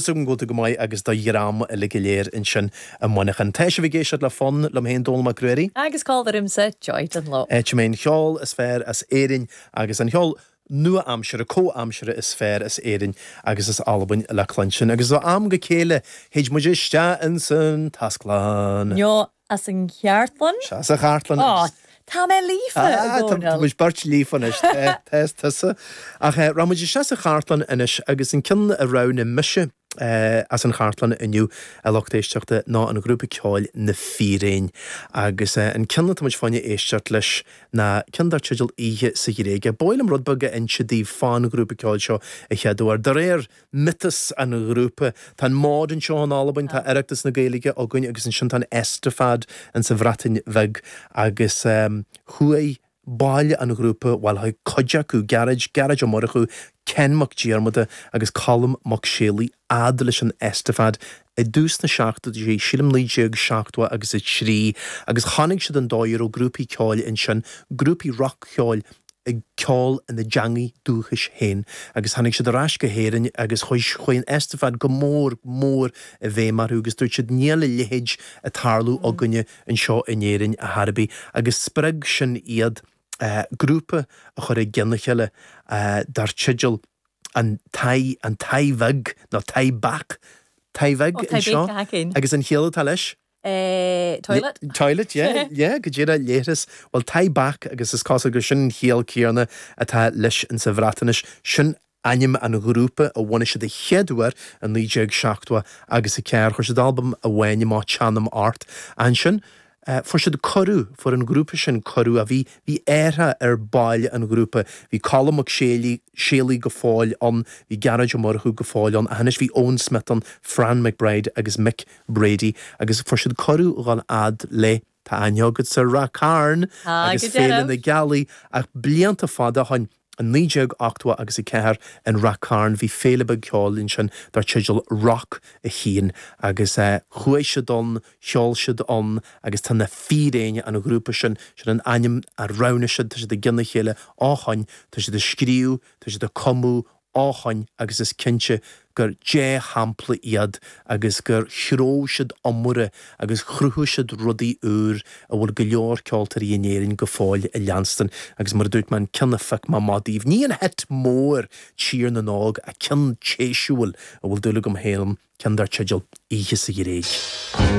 agam go bhfuil tú go maith agus do dhream uilig go léir ansin i Muineachán. Tá sibh ag éisteacht le Fonn, liom féin Dónall Mac Ruairí. Agus comhla riumsa, Joy Dunlop. Áit a mbíonn an cheol is fearr as Éirinn agus an cheol nua-aimsire, comhaimseartha is fearr as Éirinn agus as Albain le cluinstin. Agus ó am go chéile théid muid isteach insan tasglann. As an gCartlann? Sea, as an gCartlann. Ó, tá mé líofa, a Dhomhnaill! Tá muid beirt líofa anois, tá, is tusa. Ach rachaidh muid isteach sa Chartlann anois agus an ceann a roghnaigh mise as an Chartlann inniu, a lucht éisteachta, ná an ghrúpa ceoil Na Fíréin. Agus an ceann atá muid fá choinne éisteacht leis ná ceann dar teideal 'Oíche sa Ghréig'. B'áil liom rud beag a inse daoibh fán ghrúpa ceoil seo a chéaduair, de réir miotas an ghrúpa. Tá an Mod anseo in Albain, tá Oireachtas na Gaeilge againn agus ansin tá an Eisteddfod in sa Bhreatain Bheag agus chuaigh baill an ghrúpa, bhuel chuaigh cuid acu, Gearóid, Gearóid Ó Murchú, Cian Mac Diarmada agus Colm Mac Séalaigh fhad leis an Eisteddfod i dtús na seachtóidí, sílim 1970 agus a trí, agus chonaic siad an dóigh a raibh grúpaí ceoil ansin, grúpaí roc-cheoil ag ceol ina dteangaidh dúchais féin, agus tháinig siad ar ais go hÉirinn agus chuaigh an Eisteddfod go mór mór i bhfeidhm orthu agus dúirt siad níl a leithéid ag tarlú againne anseo in Éirinn ar chor ar bith agus spreag sin iad grúpa a chur i gceann a chéile dar teideal an taigh, an taigh beag, nó tŷ bach, taigh beag, anseo, agus an chiall atá leis? toilet. toilet, yeah, yeah, go díreach, leithreas, bhuel, tŷ bach, agus is cosúil gur sin an chiall céanna atá leis sa Bhreatnais, sin ainm an ghrúpa a bhunaigh siad a chéad uair i 1970 agus a ceathair, chuir siad albam amháin amach Teanam Ort, ansin, Eh, fuair siad cuireadh, fuair an grúpa sin cuireadh, a bhí, bhí athrú ar bhaill an ghrúpa, bhí Colm Mac Séalaigh, Séalaigh go fóill ann, bhí Gearóid Ó Murchú go fóill ann, ach anois bhí Eoin Smith ann, Fran McBride agus Mick Brady, agus fuair siad cuireadh dhul fhad le, tá aithne agat, ar Ráth Cairn Tá, agus go Féile na Gealaí, ach blianta fada ó shoin, I 1980 agus 4 i Ráth Cairn bhí féile beag ceoil ansin dar teideal Rock a hAon agus chuaigh siad ann, cheol siad ann agus tá na Fíréin, an ghrúpa sin, sin an ainm a roghnaigh siad, tá siad i gcionn a chéile ó shoin, tá siad ag scríobh, tá siad ag cumadh ó shoin agus is cinnte gur dea-shampla iad agus gur threabh siad iomaire agus chruthaigh siad rudaí úr a bhfuil go leor ceoltóirí in Éirinn go fóill ag leanstan agus mar a dúirt mé, an ceann a phioc mé amach daoibh, ní an hit mór Tír na nÓg, ach ceann speisialta a bhfuil dúil agam féin ann, ceann dar teideal 'Oíche sa Ghréig'.